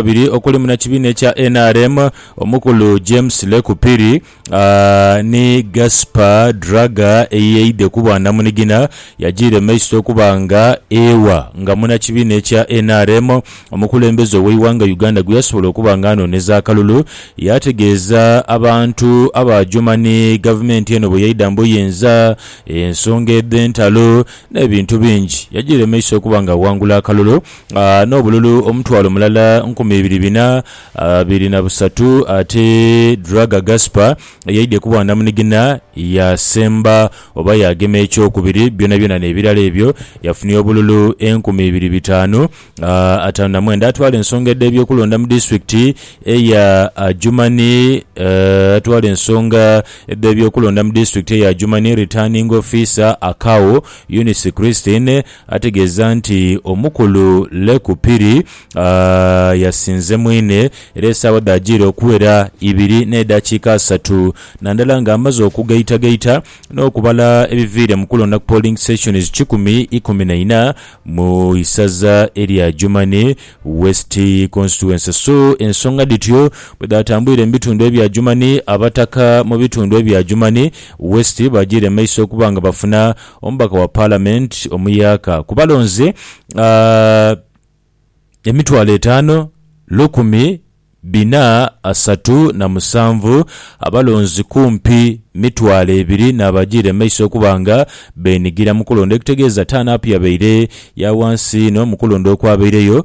abiri okuli munakibiina ekya nrm omukulu James Leku Phiri ni Gaspher Draga eyeidhe kuba namunigina yajiira emaiso okuba nga ewa nga munakibiina ekya nrm omukulembeze oweighanga Uganda gweyasobola okuba nga anoneza akalulu yategeeza abantu abajoma ni gavumenti eno bweyaidha mubuyinza ensonga edhentalo nebintu bingi yajiira emaiso okuba nga awangula akalulu n'obululu omutwalo mulala nkumi ibiri bina biri na busatu ate Draga Gaspar yaidhye ku bwandamunigina yaasemba oba yaagema ekyokubiri byonabyona n'ebirala ebyo yafunia obululu enkumi ibiri bitaanu ataanu na mwenda. Atwala ensonga edh'ebyokulonda mu disitulikiti eya Adjumani Atwala ensonga edh'ebyokulonda mu disitulikiti eya Adjumani, Returning Officer, Akao Eunice Christine, Ategeeza nti omukulu Leku Phiri yasinze mwine era esaawa dhaajiire okuwera ibiri n'edhakiika asatu nandala ng'amaze okugaitagaita n'okubala ebiviire mu kulonda ku polling sections kikumi ikumi na ina mu isaza erya Adjumani West Constituency so ensonga dhityo bwedhatambwire mu bitundu ebya Adjumani abataka mu bitundu ebya Adjumani West baajiire maiso okuba nga bafuna Omubaka wa Palamenti omuyaaka ku balonzi emitwalo etaanu, lukumi bina asatu na musanvu abalonzi kumpi mitwalo ebiri n'abajiire mu maiso okuba nga beenigira mu kulonda ekitegeeza turn up yabaire ya wansi inho mu kulonda okwabaireyo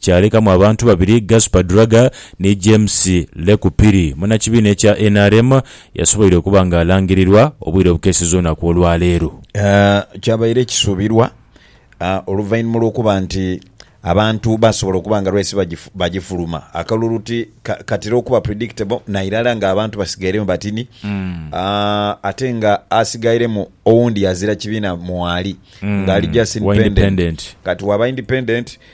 kyalekamu abantu babiri Gaspar Duraga ni James Lekupiri. Munnakibiina ekya nrm yasoboire okuba nga alangirirwa obwire obukeeseza olunaku olwaleero. Kyabaire kisuubirwa oluvainhuma lw'okuba nti abantu baasobola okuba nga race bagifuluma akalulu ti katera okuba predictable nairala nga abantu basigairemu batini ate nga asigairemu owundi yazira kibiina mwali nga ali just independent kati waba independent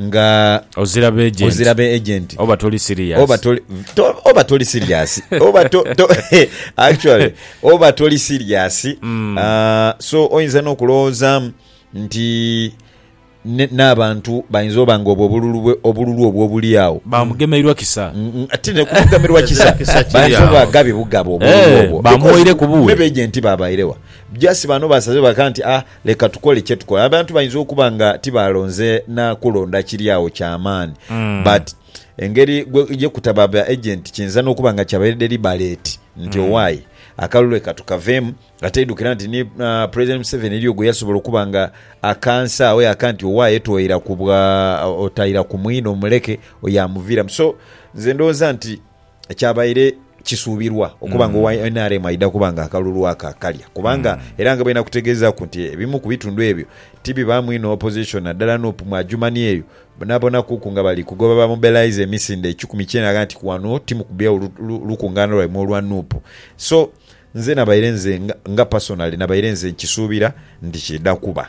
nga. Ozira be agent. Ozira be agent. Oba toli serious. Oba toli to, oba toli serious. oba to, to actually oba toli serious. Mm. Uh, so oyinza no kulowoozamu nti n'abantu bayinza oba nga obwo obululu obululu obwo obuli awo bamugemeirwa kisa mm, mm, ati nekumugemerwa kisa bayinza oba gabi bugabo obululu eh, obwo bamuwaire kubuwe nebegenti babairewa just bano basaze baka nti ah Leka tukole kye tukola. Abantu bayinza okuba nga tibaalonze na kulonda kiri agho kya maani, but engeri gwe ye kutaba ba agenti kiyinza n'okuba nga kyabaire deliberate nti owaye akalulu leka tukaveemu. Ate idhukira nti ni ah, President Museveni eriyo gwe yasobola okuba nga akansa agho yaaka nti owaye toira ku bwa otaira ku mwine omuleke oyo amuviiramu. So nze ndowooza nti. kyabaire kisuubirwa okuba nga owa nrm aidha kuba nga akalulu ako akalya kubanga era nga bwenakutegeezaaku nti ebimu ku bitundu ebyo tibibaamu inho opposition naddala nup mu Adjumani eyo boonabonakuku nga bali kugoba bamobilise emisinde ekikumi kyena agha nti wano timukubyagho lukungaana lwaimwe olwa nup so nze nabaire nze nga personally nabaire nze nkisuubira nti kiidha kuba.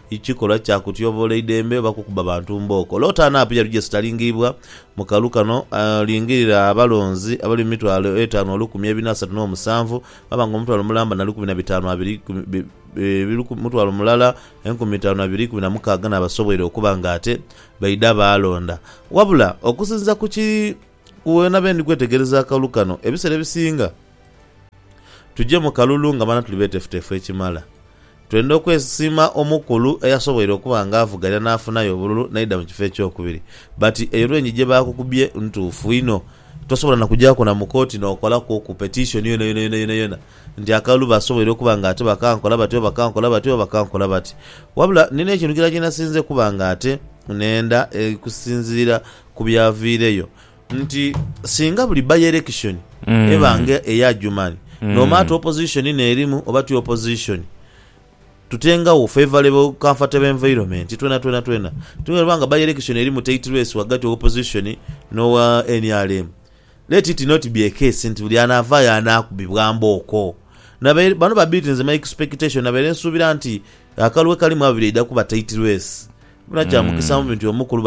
Ikikolwa kya kutyoboola eidembe oba kukuba bantu mbooko. Lota anaapu ya Rujesi talingiibwa mu kalu kano. Lingirira abalonzi abali mu mitwalo etaanu olukumi ebina asatu n'omusanvu, mwaba nga omutwalo mulamba na lukumi na bitaanu abiri ikumi, mutwalo mulala enkumi itaanu abiri ikumi na mukaaga n'abasoboire okuba nga ate baidha baalonda. Wabula, okusinziira ku ki. Ku wena bendi kwetegereza akalulu kano, ebisera ebisinga tuje mu kalulu nga mana tuli betefutefu ekimala. Twenda okwesima omukulu eyasoboire okuba nga avuganya nafunayo obululu naidha mu kifo ekyokubiri. But eyo lwengi gyebakukubye ntuufu inho. Tosobola na kujaku na mu kooti nokolaku oku petition yonayona yonayonayona nti akalulu basoboire okuba nga ate bakankola bati oba bakankola bati oba bakankola bati. Wabula nina ekintu kirala kyenasinze okuba nga ate nenda kusinziira ku byaviireyo nti singa buli by-election eba nga eya Adjuman, no matter opposition n'erimu oba ti opposition, tutengagho favourable comfortable environment twena twena twena. Ti bweba nga by-election erimu tight race ghagati wa opposition n'owa nrm, let it not be a case nti buli anaavaayo anaakubibwa mbooko. Nabaire, bano babiri nze my expectation nabaire nsuubira nti akalwe kalimu abiri eidha kuba tight race Muna kya mukisa mu bintu omukulu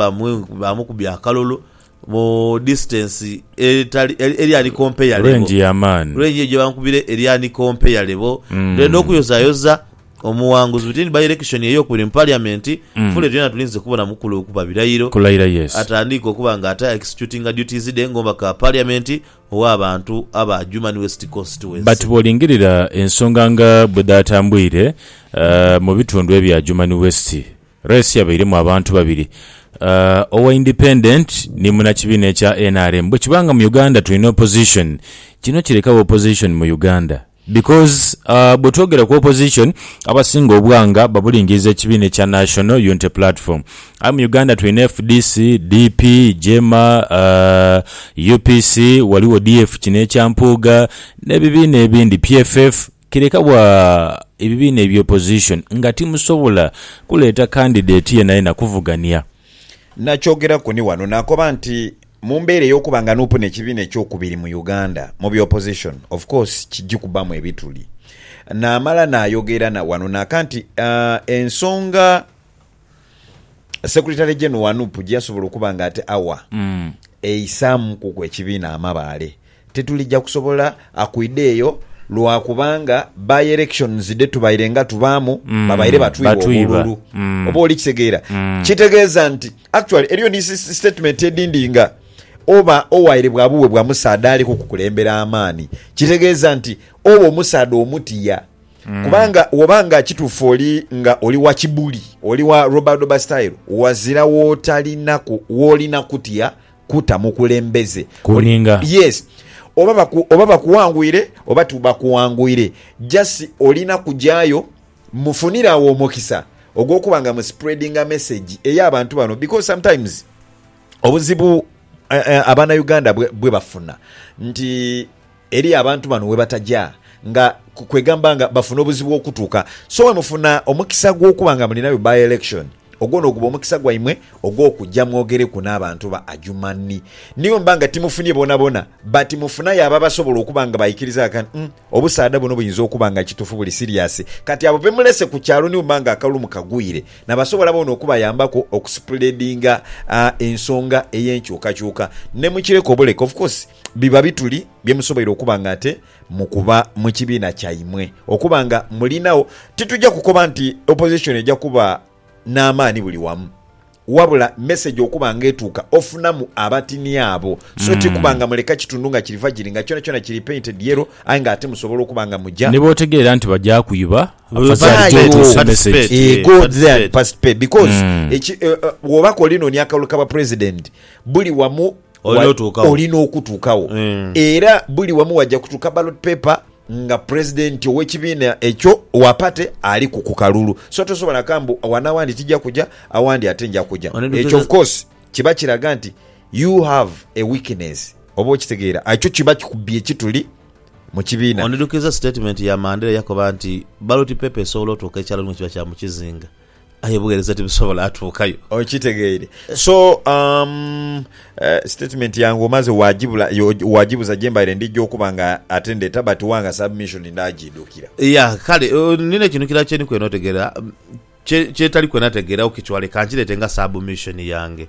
bamukubye akalulu mu disitansi eri anikompealebo, rengi ya maani, rengi eyo gye bamukubire eri anikompealebo, dore n'okuyozayoza omughanguzi within by-election ey'okubiri mu Paliamenti, Fule byona tulinze kubona mukulu kuba birayiro, atandiike okuba nga ate a-executinga duties dhe ng'omubaka wa Paliamenti, Ow'abantu aba Adjumani West Constituency. But bwolingirira ensonga nga bwedhatambwire mu bitundu ebya Adjumani West, race yabairemu abantu babiri, owa independent ni munakibiina ekya nrm. Bwekiba nga mu Uganda tulina opposition, kino kirekagho opposition mu Uganda? Because bwe twogera ku opposition abasinga obwanga babulingiriza ekibiina ekya National Unity Platform. Aye mu Uganda tulina fdc, DP, Jema, UPC, waliwo DF kino ekya Mpuuga n'ebibiina ebindi PFF. Kireka bwa ebibiina ebya opposition nga timusobola kuleeta candidate yenayena kuvugania. Nakyogeraku ni wano nakoba nti mu mbeera ey'okuba nga nuupu n'ekibiina ekyokubiri mu Uganda mu bya opposition of course kiji kubamu ebituli. Naamala naayogera wano naaka nti ensonga Secretary General wa nup gyeyasobola okuba nga ate awa eisaamukuku ekibiina amabaale, Titulija kusobola kwidha eyo lwa kubanga by elections dhe tubaire nga tubaamu babaire batwigha obululu. Oba oli kitegeera? Kitegeeza nti actually eriyo ni statement edhindi nga oba owaire bwa buwe bwa musaadha ali kukukulembera amaani kitegeeza nti oba omusaadha omutya kubanga woba nga kituufu oli nga oli wa Kibuli, oli wa Robadoba style ghazira w'otalinaku w'olina kutya. kuta mukulembeze Ku ninga. yes oba baku oba bakuwangwire oba tubakuwangwire just olina kujayo mufunire awo omukisa ogwokuba nga mu spreadinga message eya bantu bano because sometimes obuzibu eh, eh, abana Uganda bwe bwebafuna nti Eriyo abantu bano webataja nga kwegamba nga bafuna obuzibu okutuka so wemufuna omukisa gwokuba nga mulinayo by election ogwo noguba omukisa gwaimwe ogwokuja mwogereku nabantu ba Adjumani niyo muba nga timufunie bonabona but mufunayo abo abasobola okuba nga baikiriza nga kati umm obusaadha buno buyinza okuba nga kitufu buli serious kati abo bemulese kukyalo nibo muba nga akalulu mukagwire nabasobola bona okubayambaku okuspreadinga ensonga eyenkyukakyuka nemukireka obuleka of course Biba bituli bye musoboire okuba nga ate mukuba mu kibiina kyaimwe okuba nga mulinagho. Titugya kukoba nti opozishoni eja kuba n'amaani buli wamu, wabula meseji okuba nga etuuka ofunamu abatini abo. So ti kuba nga muleka kitundu nga kiri vagiri nga kyonakyona kiri painted yellow aye nga ate musobola okuba nga muja. Ni bw'otegeera nti baja kwiba, afadhali gyotuuse meseji. Eeh, go there and participate because eki, bw'oba k'oli nonia akalulu ka bwa president, buli wamu olina okutuukawo era buli wamu wajja kutuuka ballot paper nga president owekibiina ekyo wa party ali ku kukalulu so tosobola ka mbu wano awandi tija kuja awandi ate nja kuja ekyo of course kiba kiraga nti you have a weakness oba okitegeera ekyo kiba kikubye kituli mukibiina. Onidhukiza statement ya Mandela eyakoba nti ballot paper esobola otuuka ekyalo ni bwekiba kya mukizinga. Aye obugheereza tibusobola atuukayo. Okitegeire? So, um, eh, statement yange omaze wagibula, yo- wagibuza gyembaire ndija okuba nga ate ndeta but wanga submission ndaagiidhukira. Ya, kale, oh, nina ekintu kirala kye ndi kwenda otegeera, mm, kye, kyetali kwenda tegeera, ok, kiwale, kankireete nga submission yange.